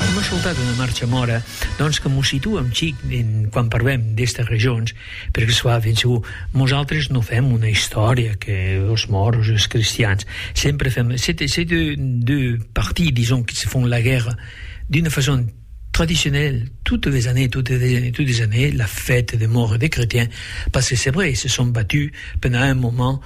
Èm escoltat una marcha mòra, doncs, que mos situa un chic en quan parlem d'estas regions, per que soi ben segur, mosaltres non fèm una istòria que los mòros e los cristians, sempre fèm, se te, se deu, deu partir, dison, que se fon la guèrra d'una fason tradicionèl totes les années, totes les années, totes les années, la fête de mòr e de cretiens, pas se sebre, se son batus pendant un moment,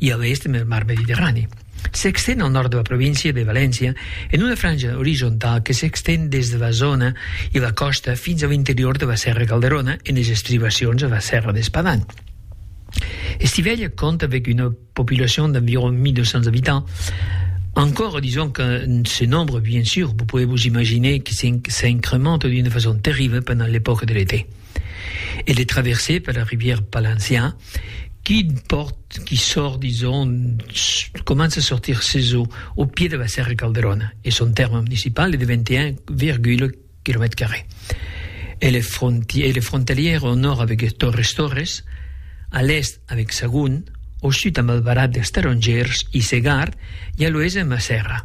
e a l'èst en el mar Mediterrani. S'exten al nòrd de la província de Valéncia en una franja orizontau que s'exten des de la zòna e la còsta fins a l'interior de la Sèrra Calderona en es estribacions a la Sèrra d'Espadan. Estivella compte avec une population d'environ 1200 habitants. Encore, disons que ce nombre, bien sûr, vous pouvez vous imaginer que s'incremente d'une façon terrible pendant l'époque de l'été. e de traverser per la rivière Palancian qui pòrt, qui sòrt, dison, comença a sortir sus o au pied de la Sèrra Calderona e son tèrme municipal es de 21,. Quilomètres carrés. Elle est fronti elle est frontalière au nòrd avec Torres Torres, a l'èst avec Sagunt, au sud amb Albarat dels Tarongèrs i Segart e a l'oèst amb la Sèrra.